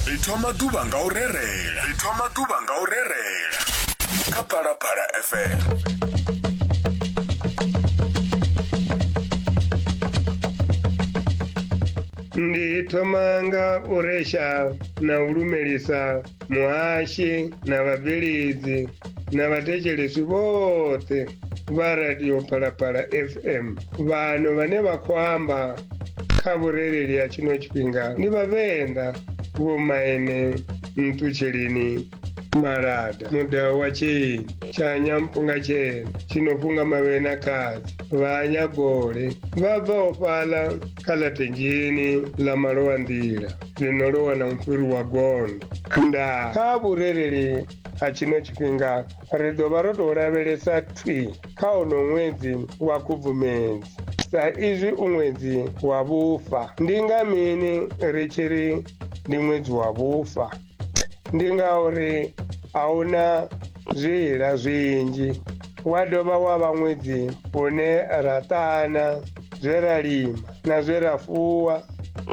ri thoma ḓuvha nga u rerela ri thoma ḓuvha nga u rerela kha phalaphala fm ndi thoma nga u resha na u lumelisa muhashi na vhabveledzi na vhathetshelesi vhoṱhe vha radio phalaphala fm vhano vhane vha khou amba kha vhurereli ha tshino tshifhinga ndi vhavenḓa vhomaine nṱutsheleni malada mudau wa tsheni tshanya mpunga tshena tshinofunga mavhena khadzi vhanyagole vha bvaho fhaḽa kha ḽa thenjeni ḽa malowa nḓila ni no ḽi wana mufhiri wa gondo ndaa kha vhurereli ha tshino tshifhinga ri ḓo vha ro tou lavhelesa thwi kha ono ṅwedzi wa khubvumedzi sa izwi u ṅwedzi wa vhufa ndi nga mini ri tshi ri ndi ṅwedzi wa vhufa ndi ngauri a hu na zwiila zwinzhi wa dovha wa vha ṅwedzi une ra ṱana zwe ra lima na zwe ra fuwa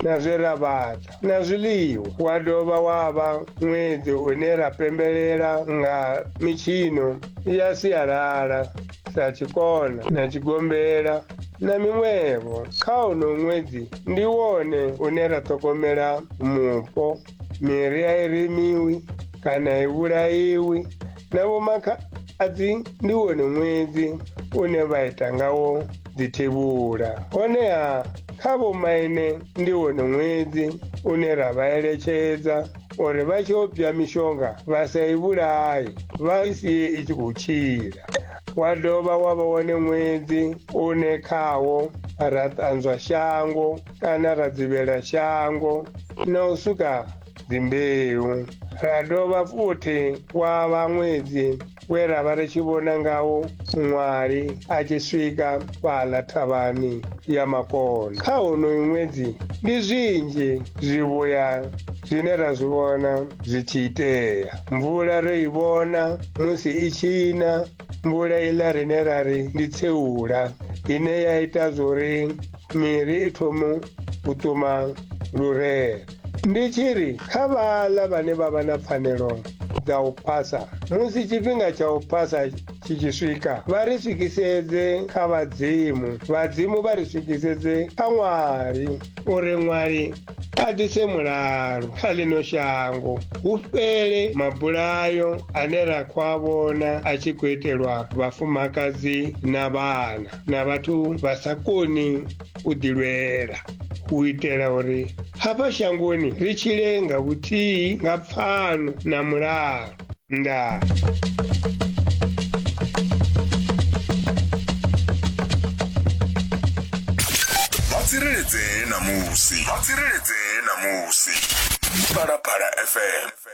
na zwe ra vhaḓa na zwiḽiwa wa dovha wa vha ṅwedzi une ra pembelela nga mitshino ya sialala sa tshikona na tshigombela na miṅwevho kha uno ṅwedzi ndi wone une ra ṱhogomela mupo miri a i remiwi kana i vhulaiwi na vhomakha adzi ndi wone ṅwedzi une vha ita ngawo dzithevhula honeha kha vhomaine ndi wone ṅwedzi une ra vha eletshedza uri vha tshi obya mishonga vha sa i vhulaye vha i sie i tshi khou tshila wa dovha wa vha wone ṅwedzi une khawo ra ṱanzwa shango kana ra dzivhela shango na u suka dzimbeu ra dovha futhi wa vha ṅwedzi we ra vha ri tshi vhona ngawo muṅwali a tshi swika fhaḽa thavhani ya makona kha honoyu ṅwedzi ndi zwinzhi zwivhuya zwine ra zwi vhona zwi tshi itea mvula ro i vhona musi i tshi na mvula iḽa rine ra ri ndi tseula ine ya ita zwori miri i thomo u ṱuma lurere Ndi tshi ri kha vhaḽa vhane vha vha na pfanelo dza u phasa musi tshifhinga tsha u phasa tshi tshi swika vha ri swikisedze kha vhadzimu vhadzimu vha ri swikisedze kha ṅwali uri ṅwali a ḓise mulalo kha ḽino shango hu fhele mabulayo ane ra khou a vhona a tshi khou itelwa vhafumakadzi na vhana na vhathu vha sa koni u ḓilwela u itela uri hafha shangoni ri tshile nga vhuthihi nga pfano na mulalo ndaa vha tsireledzee na musi vha tsireledzee na musi phalaphala fm